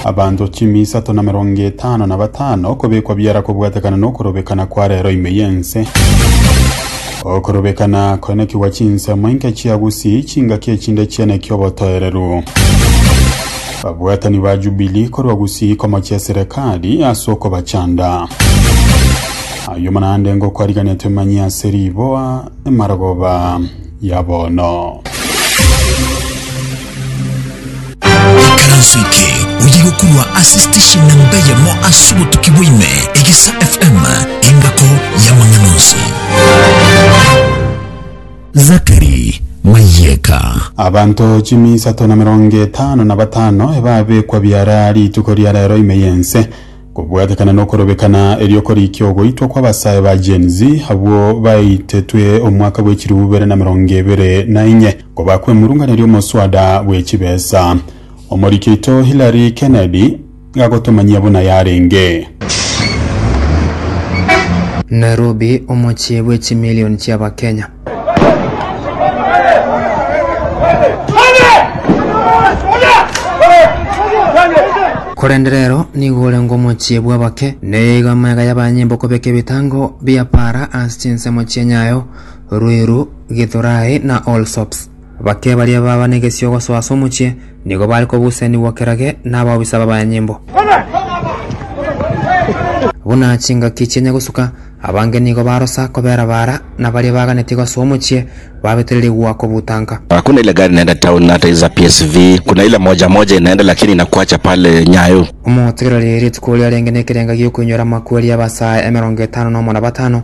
Abanto chimi isato na emerongo etano na batano okobekwa biara kobwatekana nokorobekana kwa rero ime y'ense. Okorobekana koenekigwa chinsemo inke chia gusii, chingaki echinde chieneki obotoereru. Babwatani ba Jubilii korwa gusii komochia eserekari ase okobachanda. Ayio naende ngokwariganetwe manyia ase riboa, emarogoba. ya bono. Ekaranso eke oye gokurwa ase station na mbeyemo ase obotuki bwaime egesa FM engako y'amang'ana onsi. Zakari Mayeka. Abanto chimi isato na emerongo etano na batano ebabekwa biara rituko ria rero ime y'ense. Kobwatekana nokorobekana eriokorikia ogoitwa kw'abasae ba Gen Z abwo baitetwe omwaka bw'echilifu ibere na merongo ebere na inye kobakwa emurungana eri'omoswada bw'echibesa. Omoriki oito Hillary Kennedy gagotomanyia buna yarenge. Nairobi, omochie bw'echimilioni chi'Abakenya. Korende rero nigo orenge omochie bw'abake, na eyo igo amagega y'abanyembo okobeka ebitango bia Baala ase chinsemo chi'enyayo, Ruiru, Githurae, na Allsops. Bake baria baba negesio gosoa ase omochie nigo bare kobusenigwa kerage nabaobisa b'abanyanyimbo. Buna chingaki chienya gosuka, abange nigo barosa kobera baara, na baria baganetie gosoa omochie babetererigwa kobutanka. Hakuna ile gari inaenda town na hata hizi za PSV kuna ile moja moja inaenda lakini inakuacha pale Nyayo. Omotegereri rituko riarenge nekerenga giokoinyora amakweri abasae emerongo etano nomo na batano.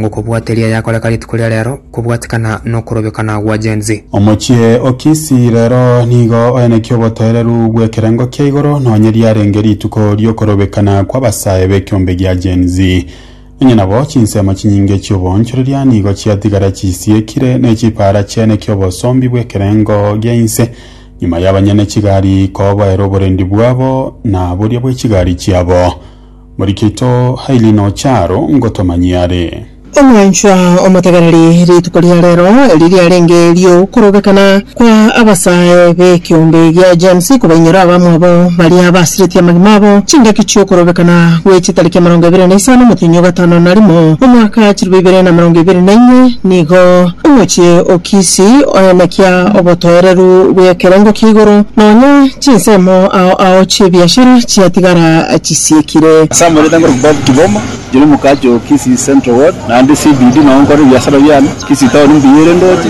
Ngokobwateria yakoreka rituko ria rero kobwatikana nokorobekana gwa Gen Z. Omochie o Kisii rero nigo oenekia obotoereru bw'ekerengo kia igoro nonye riarenge rituko ri'okorobekana kw'abasae b'ekiombe gia Gen Z. Nonya nabo chinsemo chinyinge chi'oboonchoreria nigo chiatigara chisiekire nechipaara chiaenekia obosombi bw'ekerengo gia inse nyuma y'abanyene chigari koboera oborendi bwabo na boria bwe chigari chiabo. Morikito Hailey noche aro ngotomanyie are. Omwanchwa omotegereri, rituko ria rero eri riarenge ri'okorobekana kwa abasae b'ekeombe gia James kobainyora abamwabo baria abasiretie amagima abo chingaki chi'okorobekana gwe chitariki emerongo ebere na isano omotenyi o gatano na rimo omwaka chilifu ibere na emerongo ebere na inye nigo omochie o Kisii oenekia obotoereru bw'ekerengo kia igoro nonya Chinsemo ao ao chi'ebiashara chiatigara chisiekire. Ase amanyete ngorokwa Bob Kiboma, inche nomokachi o Kisii Central Ward, naende CBD nogo nkore ebiasara biane, Kisii Town mbuya ere ndoche,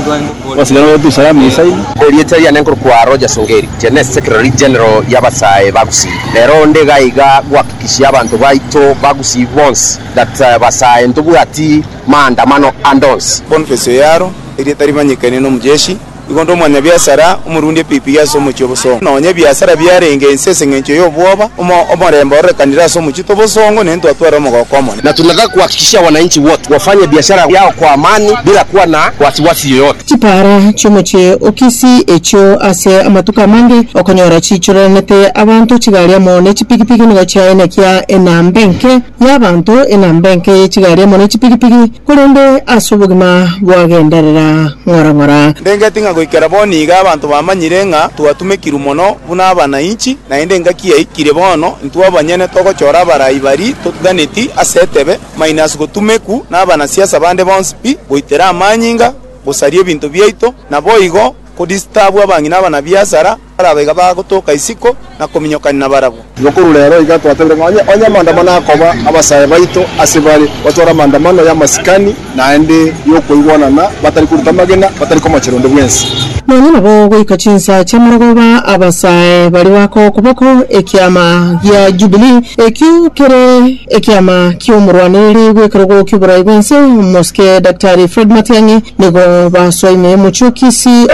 Obasacha nabwo Dar-es-Salaam esaine. Erieta riane nkorokwa Rogers Ongeri, inche ne Secretary General y'abasae ba Gusii. Rero onde iga iga gohakikishia abanto baito ba Gusii bonsi that basae ntobwati maandamano ande onsi. Boniface Oyaro, erieta rimanyekane n'Omujeshi. Igo onde omwanyabiasara omorundi epipi ase omochie obosongo, nonya ebiasara biarenge inse ase engencho y'obwoba, omorembe ororekanire ase omochie t'obosongo, ne ntwatware omogoko omonene. Na tunataka kuhakikishia wananchi wote wafanye biashara yao kwa amani bila kuwa na wasiwasi yoyote. Chipaara chi'omochie o Kisii echio ase amatuko amange okonyora chiichoreranete abanto chigari amo ne chipigipigi nigo chiaye nekia enamba enke y'abanto, enamba enke ye chigari amo ne chipigipigi. Korende ase obogima bwagenderera ng'ora ng'ora. Ndengeti ng'a goikera bono iga abanto bamanyire ng'a twatumekirwe mono buna abanainchi, naende engaki yaikire bono intwe abanyene togochora abarai baria totuganeti ase etebe, mainasi gotumeku nabanasiasa bande bonsi pi, goitera amanyinga, gosaria ebinto biaito, naboigo kodistabu abang'ina abanabiasara, baraba iga bagotoka isiko na kominyokania nabarabwo. Igo korwa rero iga twatebire ng'a onye onye amaandamano akoba abasae baito ase bare, batore amaandamano y'amasikani naende y'okoigwanana, batari koruta amagena, batari komochera onde bwensi. Nonya nabo goika chinsa chi'amarogoba abasae baria bakoa okoboko ekiama gia Jubilee, ekio kere ekiama ki'omorwaneiri bw'ekerogo ki'oborai bw'ense, Mosike Daktari Fred Matiang'i, nigo basoa ime y'omochie o Kisii.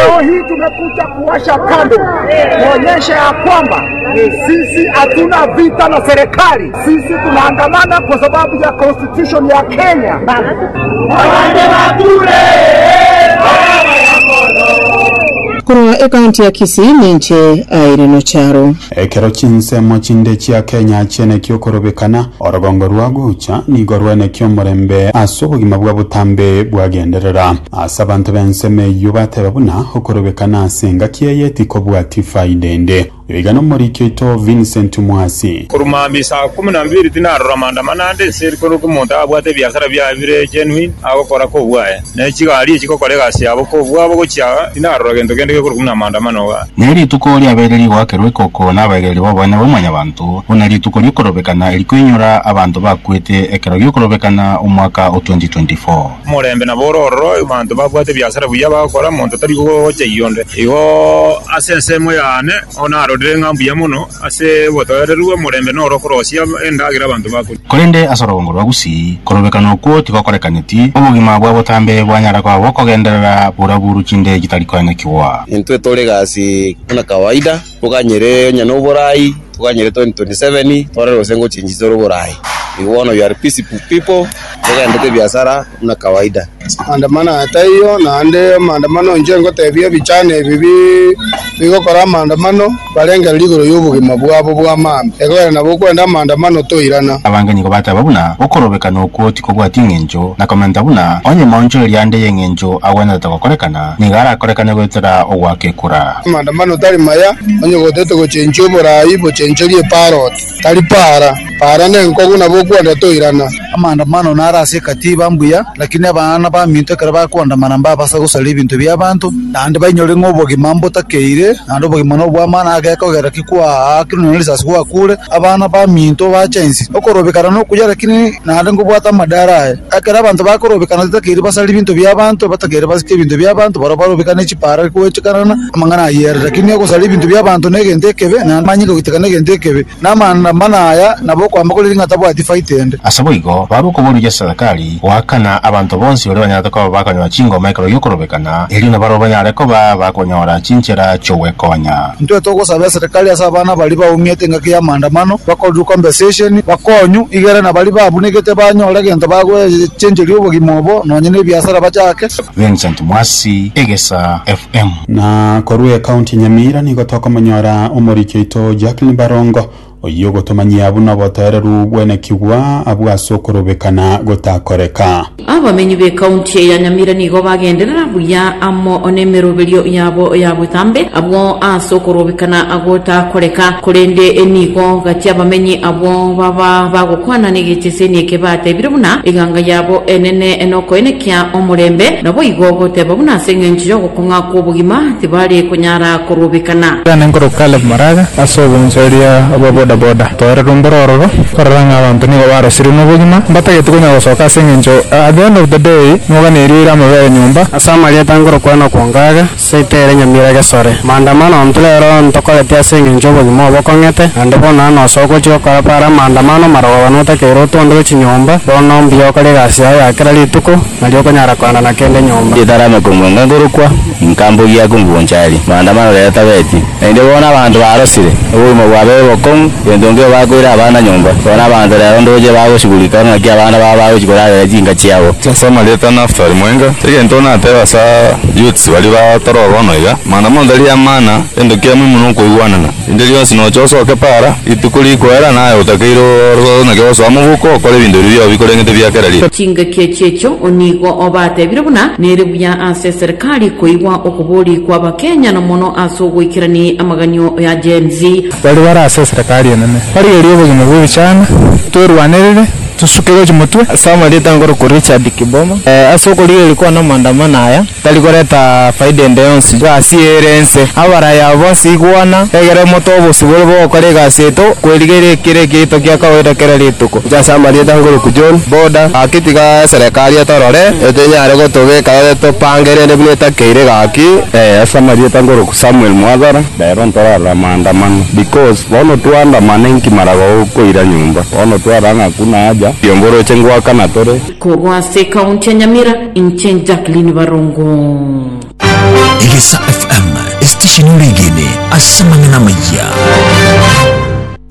Washa kando, tuonyeshe ya kwamba sisi hatuna vita na serikali. Sisi tunaandamana kwa sababu ya constitution ya Kenya. Abande bakure baraba ya mono. Korwa ekaunti ya Kisii ninche Irene Ocharo. Ekero chinsemo chinde chia Kenya chieneki okorobekana, orogongo rwa gocha nigo rweneki omorembe ase obogima bwa botambe bwagenderera. Ase abanto b'ensemo eyio bateba buna okorobekana ase engaki eye tikobwati faida ende. Oyo iga nomoriki oito Vincent Mwasi. Korwa mambia saa ikomi na ibere tinarora maandamano ande ense ere korwa omonto abwate ebiasara biaye bire genuine agokora kobwaye, ne chigari echigokora egasi yabo kobwabo gochia aa, tinarora gento kende gekorwa buna amaandamano iga. Ne rituko riabeire rigoakerwa ekoko nabaireri b'obonene bwa Mwanyabaanto, buna rituko ri'okorobekana erikoinyora abanto bakwete ekero gi'okorobekana omwaka o 2024. Omorembe nabo ore ororo, abanto babwate ebiasara buya bagokora, monto tari gochayia onde. Igo ase ensemo yane narorire ng'a mbuya mono ase obotoereru omorembe noro okorosia endagera abanto bakoria. Korende ase orogongo rwa Gusii, korobekana okwo tigokorekaneti, obogima bwa botambe bwanyara koba bokogenderera buraburu chinde chitari koenyekigwa. Intwe tore gasi buna kawaida. Toganyire onye na oborai, toganyire 2027 twarore gose ngochia inche tore oborai. Be one of your peaceable people, togendete ebiasara buna kawaida. Maandamano aya taiyo naende maandamano inche ngotebia ebichani ebi bi bigokora maandamano barengereria igoro yobogima bwabo bw'amaambia. Ekogera nabo okwenda amaandamano toirana. Abange nigo bateba buna okorobekana okwo tikobwati engencho, na komenta buna onye maonchoreria ande y'engencho agwenerete gokorekana. nigo arakorekane goetera ogwakekura. Amaandamano tari maya, onye gotete gochenchwa oboraai bochenchorie eparoti, tari paara. Paara nenkogu nabo okwenda toirana. Amaandamano naro ase ekatiba mbuya, lakini abana baminto ekero bakoandamana mbabasa gosaria ebinto bi'abanto, naende bainyore ng'a obogima mbotakeire, naende obogima nobw'amano agekogera ki kwaakirwe nonya risasi gwakuure, abana baminto bacha inse, okorobekana nokuya, lakini naende ngobwate amadaaro aye. Ekero abanto bakorobekana titakeiri basare ebinto bi'abanto, batakeire basike ebinto bi'abanto, barabwo barobekane chipara goechekanana amang'ana ayio ere. Rakini ogosara ebinto bi'abanto negento ekebe, na amanyinga goiteka negento ekebe, na amanda mana aya nabo okoamba koriri ng'a tabwati faita ende. Aseboigo, babe okoboria Jesarakari goakana abanto bonsi baria banyarete koba bakonyora chingoma ekero gi'okorobekana, erio nabarabwo banyare koba bakonyora chinchera chi'ogwekonya. Intwe togosaba eserekari ase abana baria baumete engaki ya maandamano bakorerwe compensation, bakonywa, igere na baria babunigete banyore egento bagwechencheria obogima obo nonya na ebiasara bachake. Vincent Mwasi, Egesa FM. Na korwa ecounty Nyamira nigo tokomonyora omoriki oito Jacqueline Barongo Oyio ogotomanyia buna obotoereru bw'enekigwa abwo ase okorobekana gotakoreka. Abamenyi b'ekaunti ya Nyamira nigo bagenderera buya amo nemeroberio yabo ya botambe abwo ase okorobekana gotakoreka, korende nigo gati abamenyi abwo baba bagokwana negecheseni eke batebire buna eganga yabo enene nokoenekia omorembe, naboigo goteba buna ase engencho y'ogokwana. Ng'a kw'obogima tibari konyara korobekana. Iga nenkoro Caleb Maraga ase obonsoeria bwa boda boda. Toera rwombo rororo korora ng'a abanto nigo barosirwe nobogima mbatageti konya gosoka ase engencho at the end of the day mogane erio ere amabere nyomba. Ase amarieta ngorokwana okwonka aya, Seita ere nyamira gesore. Maandamano ontwe rero ntokoreti ase engencho obogima obo okong'ete, naende bono nano ase ogochi gokora para amaandamano marogobani otakeire otonde gwe chinyomba, bono mbuya okore egasi yao ya kera rituko, Nari okonyara koanana kende nyomba. Getarame komwenga ngorokwa, Inka mbogia ya komugoncha aria, Maandamano rero tabeti. Naende bono abanto barosire, Obogima bwabe bokong'u, Gento nkio bakoire abana nyomba, Bono abanto rero ndoche bagosigurika, Ng'aki abana bao bagochia korarera chinka chiabo. Ase amarieta a Naftali mwenga, egento natebe ase Yuti baria batoroba bono iga, Maandamano tari amana, Gento kiamo ime nokoigwanana. Rinde rionsi noche osoke para, rituko rikoera naye otakeire ororo naki ogosoa moboko okore ebinto ebi biobi korende tebia kera rituko. Chingaki echi'echo nigo obatebire buna nere buya ase eserikari koigwa okobori kw'Abakenya na mono ase ogoikerania amaganio ya Gen Z. Baria bare ase eserikari enene barigerie obogima bw'ebichana, twerwanerere, tosuke gochia motwe. Ase amarieta nkoroku Richard Kiboma, ase okorigereria kwane amaandamano aya, tari koreta faida ende yonsi egasi eye ere ense. Abaraya aba bonsi igwana, egera omote w'obosibore bw'ogokora egasi yaito, kwerigereria ekero ekeito kia kawaida kera rituko. Inche ase amarieta ngoruku John Boda, gaki tiga eserekari etorore, etenyare gotobeka ere topange rende buna etakeire gaki. Ee, ase amarieta ngoruku Samuel Mwathara. Rero ntorarora maandamano because bono twaandamana inki mara gokoira nyomba bono twarara ng'a hakuna haja. Riombo oroche ngoakana tore. Kogo ase ekaunti ya Nyamira inche Jacqueline Barongo. Egesa FM, esitesheni oregene ase amang'ana amaya.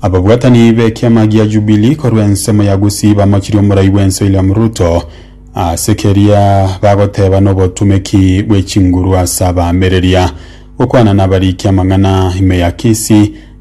Ababwatani b'ekiama gia Jubilee korwa ensemo ya Gusii bamochirie omorai bwense William Ruto ase keria bagoteba nobotumeki bwechinguru ase abaamereria gokwana nabarikia amang'ana ime ya Kisii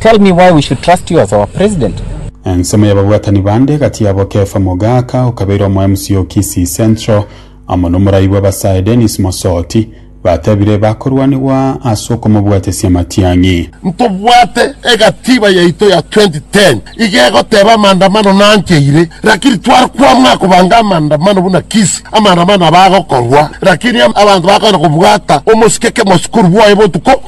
Tell me why we should trust you as our president. Ensemo y'ababwatani bande gati yabo Kefa Mogaka okabeire omo MC o Kisii Central amo nomorai bw'abasae Dennis Mosoti batebire bakorwanigwa ase okomobwatesia amatiang'i. Ntobwate egatiba yaito ya 2010 iga egoteba amandamano nancheire lakini tware kwamua kobanga amandamano buna Kisii amandamano aba agokorwa lakini abanto bakogenda kobwata omosike kemosukuru bwaye botuko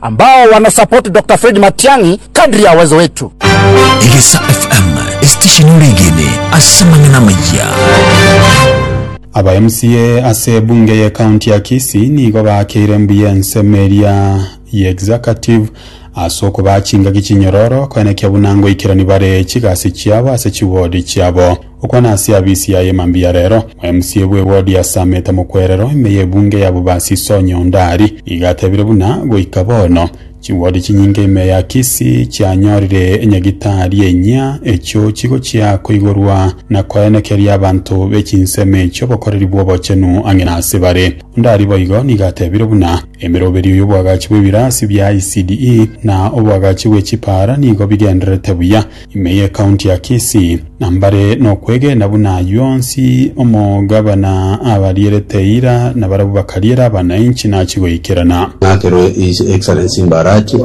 Ambao wana support Doctor Fred Matiang'i kadri ya uwezo wetu. Egesa FM, esitesheni oregene ase amang'ana amayia. Aba MCA ase ebunge ye county ya Kisii nigo baakeire mbuya ensemo eria ye executive ase okobaa chingaki chinyororo koenekia buna ngoikerani bare chigasi chiabo ase chiwodi chiabo. Okwana ase abisi yaye mambia rero. Omc bwe ward ya Sameta mokwerero ime ye bunge ya Bobasi Sonya Ondari iga atebire buna goika bono chi ward chinyinge ime ya Kisii chianyorire nyagitari enyia echio chigochia koigorwa na koenekeria abanto be chinsemo echio obokoreri bw'obochenu ang'e na ase bare. Ondari boigo nigo atebire buna emeroberio y'oboagachi bw'ebirasi bia ECDE na oboagachi bwe chipaara nigo bigendererete buya Ime y'Ekaunti ya Kisii, na mbare nokwegena buna ayio onsi, omogabana abarierete eira, na barabwo bakariera abanainchi nachi goikerana. Nakerwe His Excellency Mbarachi,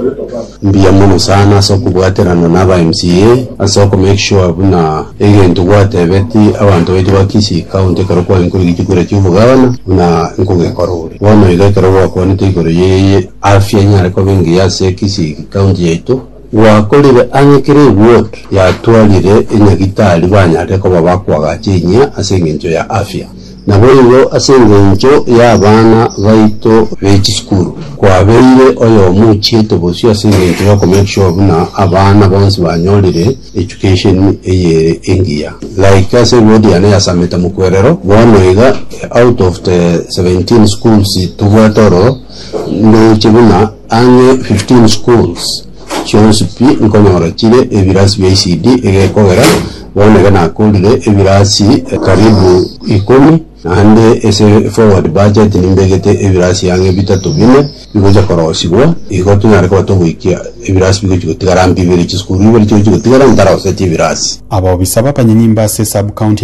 mbuya mono sana ase okobwaterana na aba MCA ase oko make sure buna egento gwatebeti abanto baito ba Kisii County ekero kwainkorire gechukure kia obogabana buna nkogekorore. Bono iga ekero gwakwanete igoro ye afya enyare koba engiya ase Kisii County yaito, Gwakorire ang'e kera egwood yatwarire enyagitari banyare koba bakoagacha enyia ase engencho ya afya. Naboigo ase engencho y'abana baito be chisukuru, kwabeire oyomo ochiete bosio ase engencho y'oko make sure buna abana bonsi banyorire education eye engiya. Like ase egwood yane ya Sameta Mukwerero, bono iga out of the 17 schools tobwate oro, Ndoche buna ang'e 15 schools chionsi pi nkonyora chire ebirasi bia ECD egekogera bono iga nakorire ebirasi karibu ikomi naende ase forward budget nimbegete ebirasi ang'e bitato bine bigocha korosigwa igo tonyare koba togoikia ebirasi bigochi gotigara mbibe chisukuru ibere chigochi gotigara ntaroseti ebirasi. Abaobisa b'abanyenyimba ase Sub-county